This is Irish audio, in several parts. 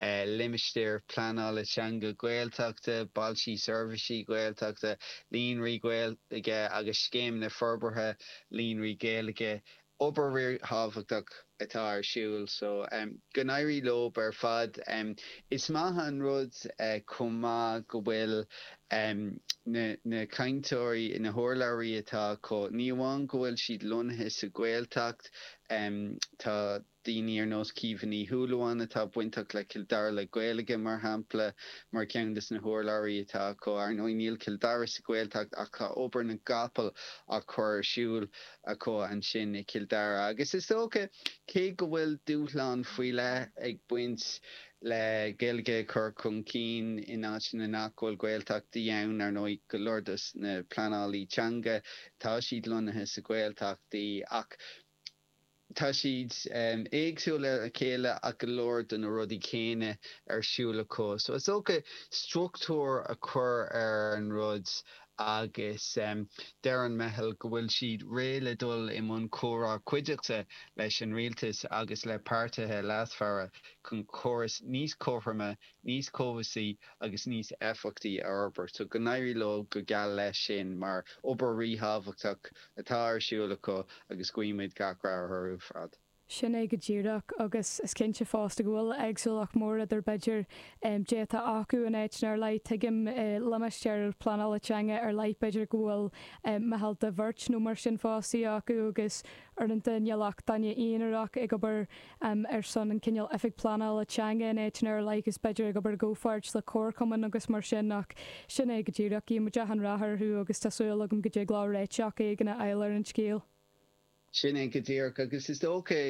Limistéir Phleanála Teanga Gaeltachta, Bailtí Seirbhíse Gaeltachta, Líonraí Gaeilge agus Scéimeanna Forbartha Líonraí Gaeilge. Obair ríthábhachtach atá ar siúl so go n-éirí leo ar fad. Is maith an rud chomh maith go bhfuil na cainteoirí, na hurlabhraí atá acu, ní amháin go bhfuil siad lonnaithe sa Ghaeltacht, tá. daoine ar nós Caoimhe Ní Shúilleabháin atá bainteach le Cill Dara le Gaeilge, mar shampla, mar cheann de na hurlabhraí atá acu. Ar ndóigh, níl Cill Dara sa Ghaeltacht ach tá obair na gcapall á cur ar siúl acu ansin i Cill Dara. Agus is dócha, cé go bhfuil dúshláin faoi leith ag baint le Gaeilge a chur chun cinn in áiteanna nach bhfuil Gaeltachtaí ann, ar ndóigh, go leor de na pleanálaí teanga, tá siad lonnaithe sa Ghaeltachtaí, ach. Tá siad éagsúil óna chéile ach go leor de na rudaí céanna ar siúl acu. So is dócha struchtúr a chur ar an rud agus deir an meitheal go bhfuil siad réidh le dul i mbun comhrá cuiditheach leis an rialtas agus le páirtithe leasmhara chun córas níos cothroime, níos cobhsaí agus níos éifeachtaí a fhorbairt. So go n-éirí leo go geal leis sin mar obair ríthábhachtach. atá ar siúl acu agus guímid gach rath orthu ar fad. Sin é go díreach, agus is cinnte fosta go bhfuil éagsúlacht mhór idir b'fhéidir caidé atá acu in áiteanna ar leith. Tuigim i limistéir pleanála teanga ar leith b'fhéidir go bhfuil meitheal de bheirt nó mar sin fostaithe acu agus uaireanta níl ach duine aonarach ag obair um ar son an cineál oifig pleanála teanga in áiteanna ar leith is b'fhéidir ag obair i gcomhpháirt le comharchumainn agus mar sin ach sin é go díreach guíonn muid achan rath orthu agus tá súil agam go dtig leo réiteach éigin a fháil ar an scéal. Sin é go díreach agus is dócha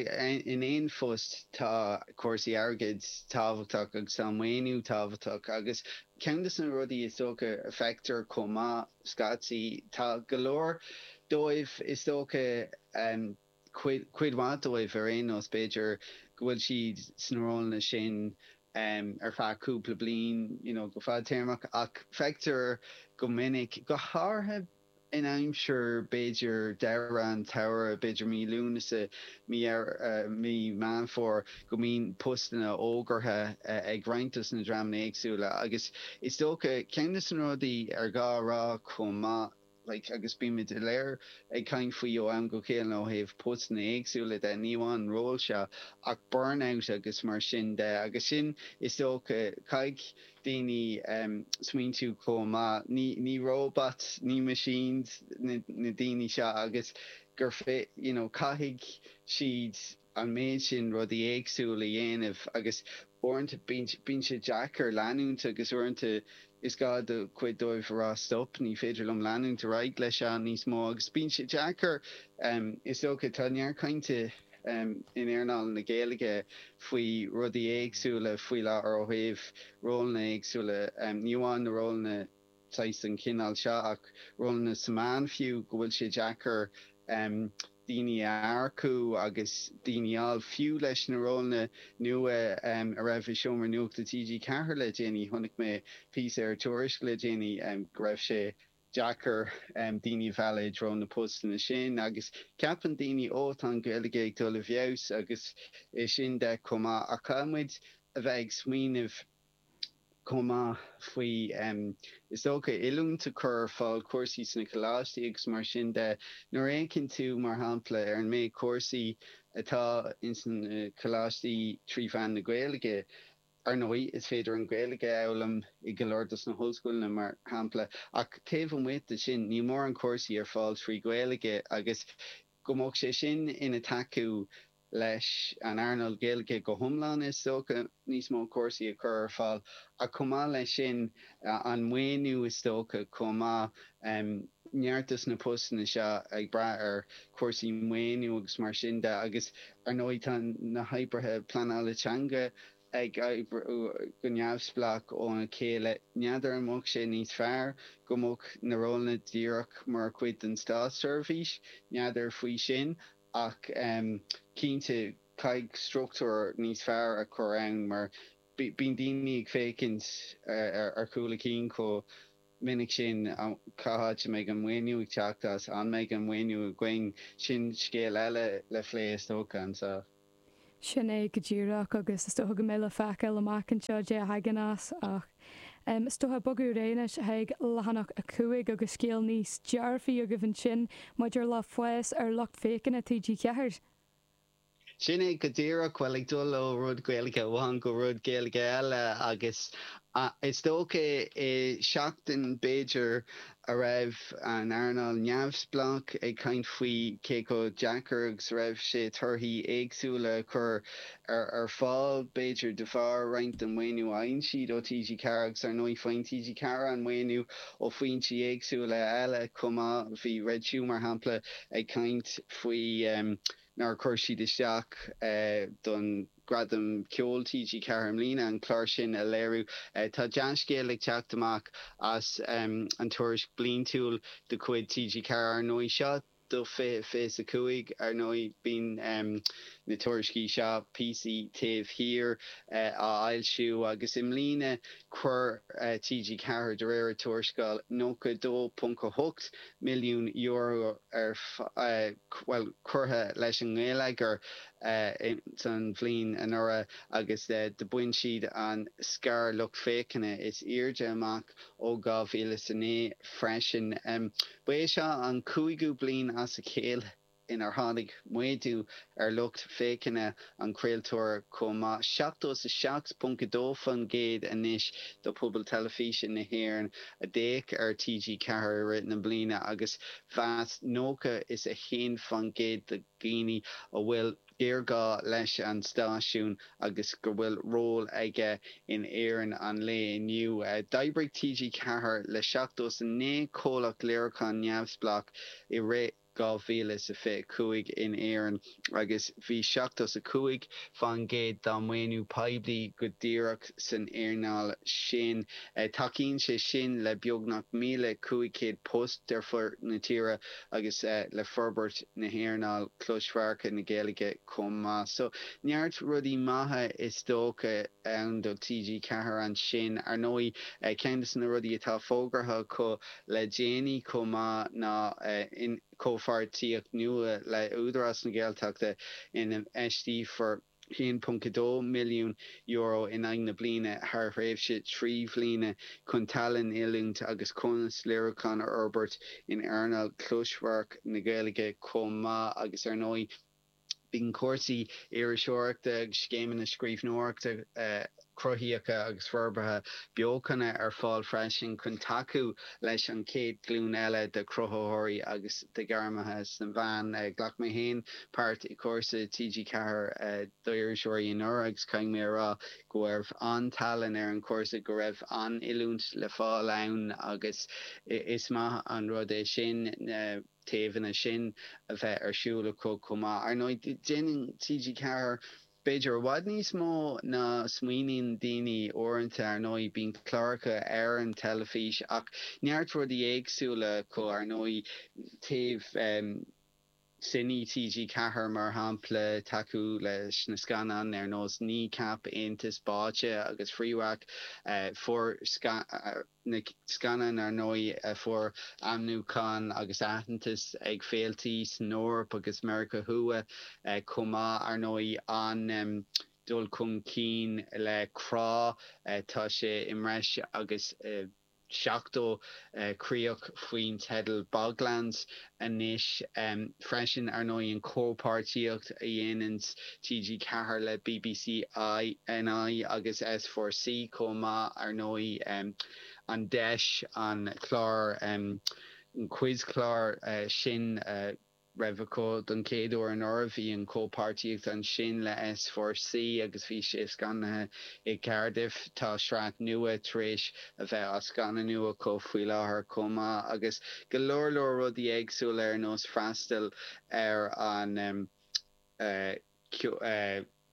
in aon phost tá cúrsaí airgid tábhachtach agus tá an maoiniú tábhachtach agus ceann de na rudaí is dócha a fheictear chomh maith scaití tá go leor dóibh is dócha a cuid mhaith dóibh ar aon nós, b'fhéidir go bhfuil siad sna rólanna sin ar feadh cúpla bliain you know go fadtéarmach ach feictear go minic, go háirithe in aimsir b'fhéidir deireadh an tsamhraidh, b'fhéidir mí Lúnasa, mí Dheireadh, mí Meán Fómhair go mbíonn postanna fógartha ag roinnt dos na dreamanna éagsúla agus is dócha, ceann dos na rudaí ar ghá a rá chomh maith. like, agus bímid go léir ag caint faoi ó am go chéile ó thaobh postanna éagsúla de, ní amháin ról seo ach burnout agus mar sin de agus sin is dócha caithfidh daoine em smaointiú chomh maith, ní ní robots, ní machines na na daoine seo agus gur féidir you know caithfidh siad. an méid sin rudaí éagsúla a dhéanamh agus uaireanta bíonn sé deacair leanúint agus uaireanta is gá do chuid dóibh a rá stop, ní féidir liom leanúint ar aghaidh leis seo níos mó agus bíonn sé deacair is dócha. Tá neart cainte in éarnáil na Gaeilge faoi rudaí éagsúla faoi láthair ó thaobh rólanna éagsúla, ní amháin na rólanna. saghas den chineál seo ach rólanna sa meán fiú, go bhfuil sé deacair daoine a earcú agus daoine a fháil. Fiú leis na rólanna nua a raibh i seomra nuachta TG4 le déanaí, chonaic mé píosa ar Tuairisc le déanaí go raibh sé deacair daoine a mhealladh i dtreo na postanna sin agus ceapann daoine oh, tá an Ghaeilge ag dul i bhfeabhas agus é sin chomh maith ach caithfidh muid a bheith ag smaoineamh chomh maith faoi, is dócha, oiliúint a chur ar fáil, cúrsaí sna coláistí agus mar sin de. Nuair a fhéachann tú, mar shampla, ar an méid cúrsaí atá ins na coláistí trí mheán na Gaeilge, ar ndóigh, is féidir an Ghaeilge a fhoghlaim i go leor dos na hollscoileanna, mar shampla, ach taobh amuigh de sin, níl mórán cúrsaí ar fáil trí Ghaeilge agus go mbeadh sé sin ina thacú leis an earnáil Ghaeilge go hiomlán, is dócha, níos mó cúrsaí a chur ar fáil ach chomh maith leis sin, an maoiniú is dócha chomh maith. Neart dos na postanna seo ag brath ar chúrsaí maoiniú agus mar sin de agus, ar ndóigh, tá na hoibrithe pleanála teanga go neamhspleách óna chéile. N'fheadar an mbeadh sé níos fearr go mbeadh na rólanna díreach mar chuid den státseirbhís? N'fheadar faoi sin ach cinnte caithfidh struchtúr níos fearr a chur ann mar bíonn daoine ag féachaint ar chúl a cinn chomh minic sin, cá háit a mbeidh an maoiniú ag teacht as? An mbeidh an maoiniú againn? Sin scéal eile le phlé is dócha ann. Sin é go díreach agus is dócha go mbeidh le feiceáil amach anseo cad é a thagann as ach is dócha bogadh ar aghaidh anois chuig leathanach a 5 agus scéal níos dearfaí agaibh ansin maidir le fás ar lucht féachana TG4. Sin é go díreach, bhuel ag dul ó rud Gaeilge amháin go rud Gaeilge eile agus is dócha i seachtain b'fhéidir a raibh an earnáil neamhspleách ag caint faoi cé chomh deacair agus a raibh sé torthaí éagsúla a chur ar fáil, b'fhéidir de bharr roinnt den mhaoiniú a fhaigheann siad ó TG4 agus ar ndóigh faigheann TG4 an maoiniú ó foinsí éagsúla eile chomh maith. Bhí Red Shoe mar shampla ag caint faoi nár chuir siad isteach don Gradam Ceoil TG4 i mbliana an clár sin a léiriú. Tá dea-scéal ag teacht amach as an tuairisc bliantúil de chuid TG4, ar ndóigh. Seo do 2025, ar ndóigh. Bíonn na tuairiscí seo, píosa taobh thiar, á bhfoilsiú agus i mbliana chuir TG4, de réir a tuarascáil, €92.8 milliún ar, bhuel, curtha leis an ngeilleagar. an bhliain anuraidh agus do bhain siad an scair lucht féachana is airde amach ó 2009 freisin. Ba é seo an cúigiú bliain as a chéile inar tháinig méadú ar lucht féachana an chraoltóra chomh maith, 77.2% anois de phobal teilifíse na hÉireann a d'fhéach ar TG4 i rith na bliana agus mheas 91% de dhaoine go bhfuil géarghá leis an stáisiún agus go bhfuil ról aige in Éirinn an lae inniu. D'oibrigh TG4 le 79 comhlacht léiriúcháin neamhspleách i rith 2025 in Éirinn agus bhí 75% dá maoiniú poiblí go díreach san earnáil sin. Tacaíonn sé sin le beagnach 1,500 post ar fud na tíre. agus le forbairt na hearnála closamhairce na Gaeilge chomh maith. So neart rudaí maithe is dócha ann do TG Ceathair ansin. Ar ndóigh ceann de na rudaí atá fógartha acu le déanaí chomh maith ná comhpháirtíocht nua le Údarás na Gaeltachta ina n-infheisteofar. €1.2 milliún in aghaidh na bliana thar thréimhse trí bhliana chun tallann, oiliúint agus cumas léiriúcháin a fhorbairt in earnáil chlosamhairc na Gaeilge chomh maith agus ar ndóigh bíonn cúrsaí iriseoireachta agus scéimeanna scríbhneoireachta a Cruthaitheacha agus Forbartha beochana ar fáil freisin chun tacú leis an chéad ghlúin eile de chruthaitheoirí agus de ghairmithe sna meáin. Ghlac mé féin páirt i gcúrsa TG4 d'iriseoirí anuraidh agus caithfidh mé a rá go raibh an-tallann ar an chúrsa, go raibh an-oiliúint le fáil ann agus is maith an rud é sin na taobhanna sin a bheith ar siúl acu chomh maith. Ar ndóigh, déanann TG4. B'fhéidir i bhfad níos mó ná smaoiníonn daoine uaireanta. Ar ndóigh, bíonn cláracha ar an teilifís ach neart rudaí éagsúla acu, ar ndóigh, taobh Cine TG Ceathair mar shampla, tacú leis na scannáin ar nós Kneecap, Aontas, Báite agus Fréwaka, fuair scannáin. na scannán ar ndóigh a fuair ainmniúchán agus aitheantas ag féiltí san Eoraip agus Meiriceá Thuaidh chomh maith. Ar ndóigh an dul chun cinn le Crá, tá sé i mbreis agus 70 críoch faoin teideal Boglands anois freisin ar ndóigh an chomhpháirtíocht a dhéanann TG Ceathair le bbc NI agus S Four C chomh maith ar ndóigh an deis an clár quizchlár sin a raibh acu don chéad uair anuraidh bhí an chomhpháirtíocht ansin le S Four C agus bhí sé scannaithe i gCaerdydd tá sraith nua tar éis a bheith á scannanú acu faoi láthair chomh maith agus go leor leor rudaí éagsúla ar nós freastal ar an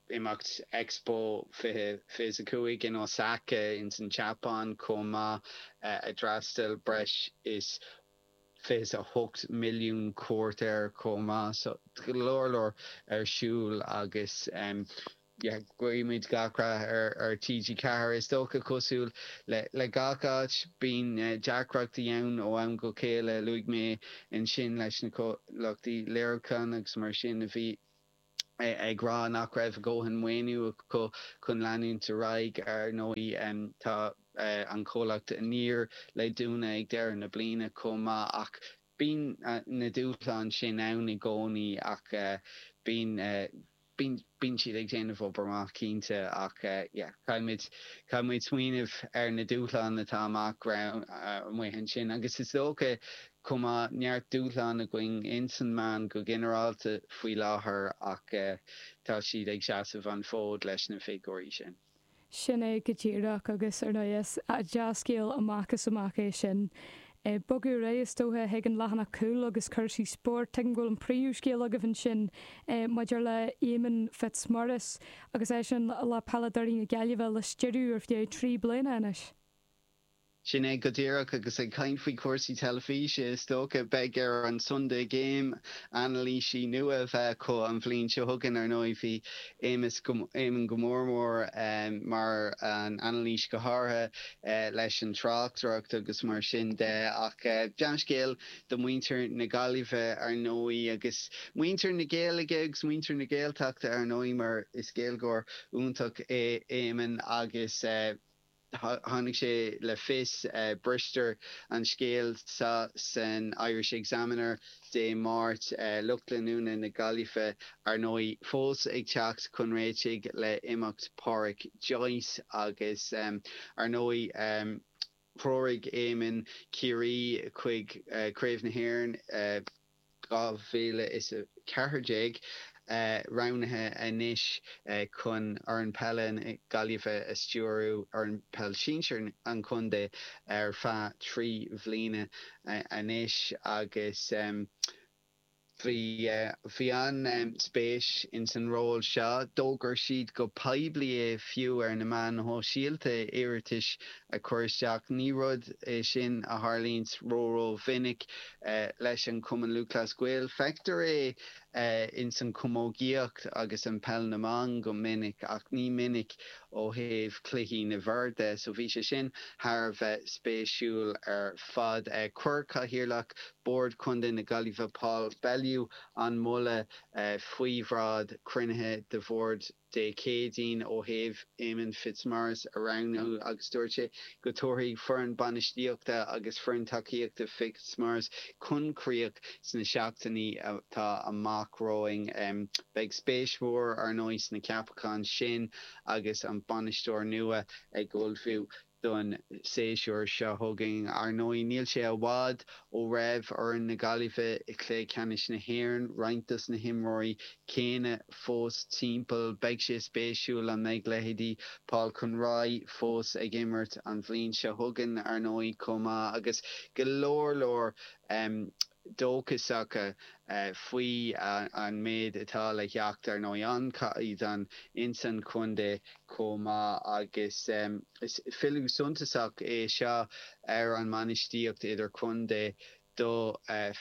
imeacht Expo 20, 25 in Osaka ins an tSeapáin chomh maith a d'fhreastail breis is fiche 's a hocht milliún cuairteoir chomh maith so go leor leor ar siúl agus. Guímid gach rath ar TG4. Is dócha, cosúil le gach áit, bíonn deacrachtaí ann ó am go chéile. Luaigh mé ansin leis na comhlachtaí léiriúcháin agus mar sin a bhí, ag rá nach raibh a ndóthain maoiniú acu chun leanúint ar aghaidh. Ar ndóigh, tá an comhlacht Aniar le dúnadh ag deireadh na bliana chomh maith ach bíonn na dúshláin sin ann i gcónaí ach bíonn. Bíonn siad ag déanamh obair maith, cinnte, ach caithfidh muid smaoineamh ar na dúshláin atá amach romhainn amuigh ansin agus is dócha chomh maith neart dúshlán againn ins na meáin go ginearálta faoi láthair ach tá siad ag seasamh an fód leis na figiúirí sin. Sin é go díreach agus ar ndóigh is dea-scéal amach is amach é sin. Ag bogadh ar aghaidh is dócha chuig an leathanach cúil agus cúrsaí spóirt, tuigim go bhfuil an príomhscéal agaibh ansin maidir le Éamonn Fitzmaurice agus eisean le peileadóirí na Gaillimhe a stiúradh ar feadh trí bliana anois. Sin é go díreach, agus ag caint faoi chúrsaí teilifíse, is dócha, beidh ar an Sunday Game anailísí nua a bheith acu an bhliain seo chugainn, ar ndóigh bhí Éamonn go mór mór mar an anailís go háirithe leis an tráchtaireacht agus mar sin de ach dea-scéal do mhuintir na Gaillimhe ar ndóigh agus muintir na Gaeilge agus muintir na Gaeltachta ar ndóigh mar is Gaeilgeoir iontach é Éamonn agus Tháinig sé le fios, briseadh an scéal seo san Irish Examiner Dé Máirt, lucht leanúna na Gaillimhe, ar ndóigh, fós ag teacht chun réitigh le imeacht Pádraic Joyce agus ar ndóigh threoraigh Éamonn Ciarraí chuig Craobh na hÉireann i 2014 roghnaithe anois chun foireann peile na Gaillimhe a stiúradh, foireann peile sinsear an chontae, ar feadh trí bhliana anois agus bhí an-spéis insan ról seo. D'fhógair siad go poiblí é fiú ar na meáin shóisialta iarratais ag cur isteach. Ní rud é sin a tharlaíonns ró-ró-mhinic leis an Cumann Lúthchleas Gael. Feictear é ins an chamógaíocht agus an peil na mban go minic ach ní minic ó thaobh chluichí na bhfear de so bhí sé sin thar a bheith spéisiúil ar fad. Chuir Cathaoirleach Bhord Contae na Gaillimhe Paul Bellew an moladh faoi bhráid cruinnithe de Bhord na. Dé Céadaoin ó thaobh Éamonn Fitzmaurice a roghnú agus dúirt sé go dtabharfaí foireann bainistíochta agus foireann tacaíochta Fitzmaurice chun críoch sna seachtainí atá amach romhainn. Beidh spéis mhór, ar ndóigh, sna ceapacháin sin agus an bainisteoir nua ag ullmhú. don séasúr seo chugainn. Ar ndóigh, níl sé i bhfad ó raibh foireann na Gaillimhe i gcluiche ceannais na hÉireann, roinnt dos na himreoirí céanna fós timpeall. Beidh sé spéisiúil an mbeidh leithéidí Paul Conroy fós ag imirt an bhliain seo chugainn, ar ndóigh, chomh maith agus go leor leor dóchasacha faoi an méid atá le theacht, ar ndóigh, an caighdeán ins an contae chomh maith agus is filleadh suntasach é seo ar an mbainistíocht idir-chontae do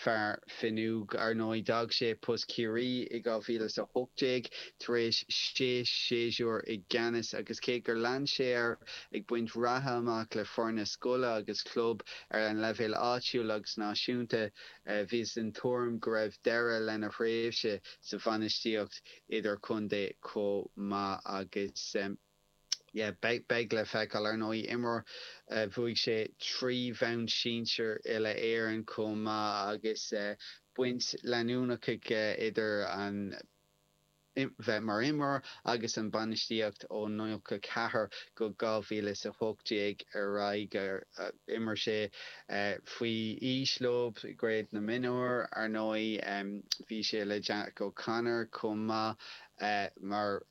fear Finuge. Ar ndóigh, d'fhág sé post Chiarraí i 2018 tar éis sé séasúr i gceannas agus cé gur lean sé air ag baint ratha amach le foirne scoile agus club, Ar an leibhéal áitiúil agus náisiúnta, bhíothas den tuairim go raibh deireadh lena thréimhse sa bhainistíocht idir-chontae chomh maith agus beidh le feiceáil. Ar ndóigh, imreoir a bhuaigh sé trí bhonn sinsir Uile-Éireann chomh maith agus baint leanúnach aige idir an. bheith mar imreoir agus an bainistíocht ó 94 go 2018 ar aghaidh d'imir sé faoi aois leo i gCraobh na Mionúr. Ar ndóigh bhí sé le Jack O'Connor chomh maith mar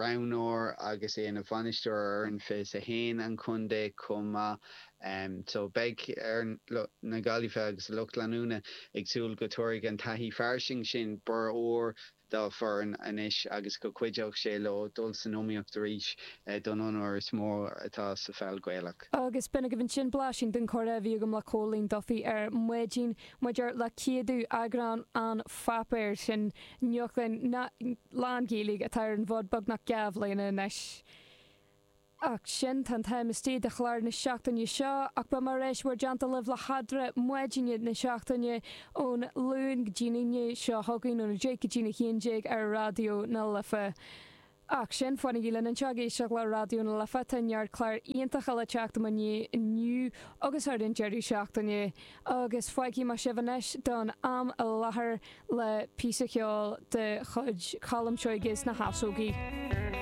roghnóir agus é ina bhainisteoir ar fhoireann 21 an chontae chomh maith so beidh fhoireann na Gaillimhe agus a lucht leanúna ag súil go dtabharfaidh an taithí fairsing sin borradh úr dá bhfoireann anois agus go gcuideoidh sé leo dul san iomaíocht arís don onóir is mó atá sa pheil Ghaelach. Agus b'in agaibh ansin blaisín den chomhrá a bhí agam le Cóilín Duffy ar maidin maidir le 100ú eagrán an pháipéir sin nuachtán lán-Ghaeilge atá ar an bhfód beagnach dhá bhliana anois. Ach sin, tá an t-am istigh do chlár na seachtaine seo, ach beidh mé ar ais i bhur dteannta libh le headra maidine na seachtaine ón Luan go dtí'n Aoine seo chugainn, óna deich go dtí'n a haon déag ar Raidió na Life. Ach sin, fanaigí linn anseo ag éisteacht le Raidió na Life, tá neart cláir iontacha le teacht i mo dhiaidh inniu agus thar an deireadh seachtaine. Agus fágfaidh mé sibh anois don am i láthair le píosa ceoil de chuid Cholm Seoighe is na hEasógaí.